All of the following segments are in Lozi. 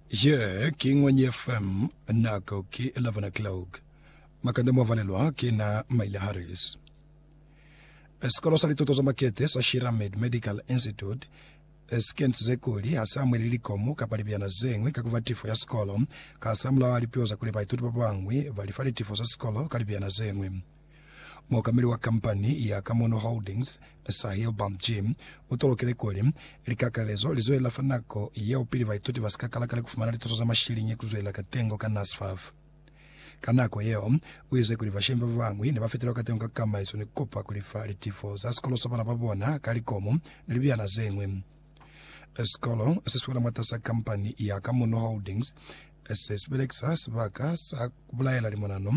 Ye ki Ngwenye FM, nako ki 11 o'clock. Makande mwa valelwa ki na Maile Harris. Sikolo sa lituto za makete sa Shiramed Medical Institute si kentize kuli ha si amuheli likomu kapa libyana ze ñwi ka ku ba tifo ya sikolo. Kasamulaho ha lipiho za kuli baituti ba bañwi ba li fa litifo za sikolo ka libyana ze ñwi, Muokameli wa kampani ya Kamono Holdings, Sahil Bamji, u tolokile kuli, Likakalezo li zwelela fa nako yeo pili baituti ba si ka kala kale ku fumana lituso za mashiliñi ku zwelela katengo ka NSFAF. Ka nako yeo, u ize kuli bashemi ba bañwi ne ba fetelwa katengo ka kamaiso ni ku kopa ku lifa litifo za sikolo sa bana ba bona ka likomu ni libyana ze ñwi. Sikolo se si wela mwatas'a kampani ya Kamono Holdings se si belekisa sibaka sa ku bulaela limonano,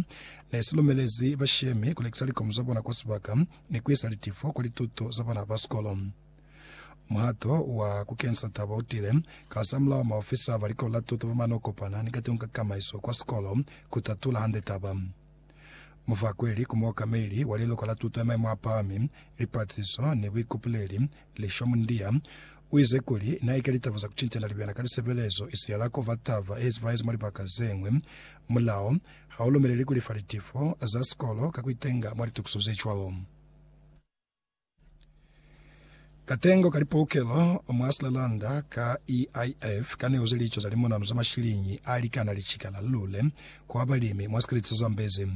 ne si lumelezi bashemi ku lekisa likomo za bona kwa sibaka ni ku isa litifo kwa lituto za bana ba sikolo. Muhato wa ku kenisa taba u tile kasamulaho maofisa ba Likolo la Tuto ba mane o kopana ni katengo ka kamaiso kwa sikolo ku tatula hande taba. Mufakweli ku muokameli wa liluka la tuto ya maimo a pahami, lipatlisiso ni buikupuleli, Lisho Mundiya, u ize kuli, Na ika litaba za ku cincana libena ka lisebelezo isi ya la kova taba ye zipahezi mwa libaka ze ñwi. Mulao ha u lumeleli ku lifa litifo za sikolo ka ku itenga mwa litukiso ze cwalo. Katengo ka lipolokelo mwa Slalanda ka EIF kaneuze lico za limonanu za mashiliñi alikana licikala lule kwa balimi mwa sikeleti sa Zambezi.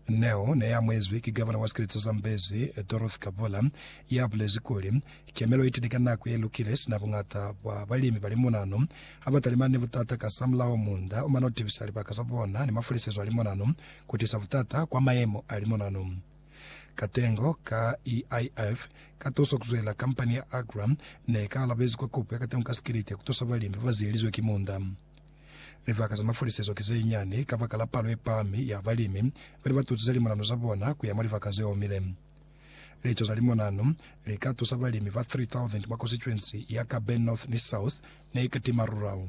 Neo neamwezwi ki Gavana wa sikeleti sa Zambezi, Dorothy Kabula, yabulezi kuli, Kemelo itile ka nako yelukile sina buñata bwa balimi ba limonanu habatalimana ni butata kasamulaho munda omana utibisa libaka zabona ni mafalisezo a limonanu kutisa butata kwa mayemo a limonanu. Katengo ka EIF katosa kuzwela kampani ya Agra ne ka alabezi kwa kopo ya katengo ka sikiliti ya kutusa balimi babazielizwe ki munda. Libaka za mafulisezo ki zenyani kabakala palo yepahami ya balimi bali batusize limonano za bona kuya mwa libaka zeomile. Lico za limonano lika tusa balimi ba 3,000 mwa konsituensi ya Kabe North ni South ne ikatima Rural.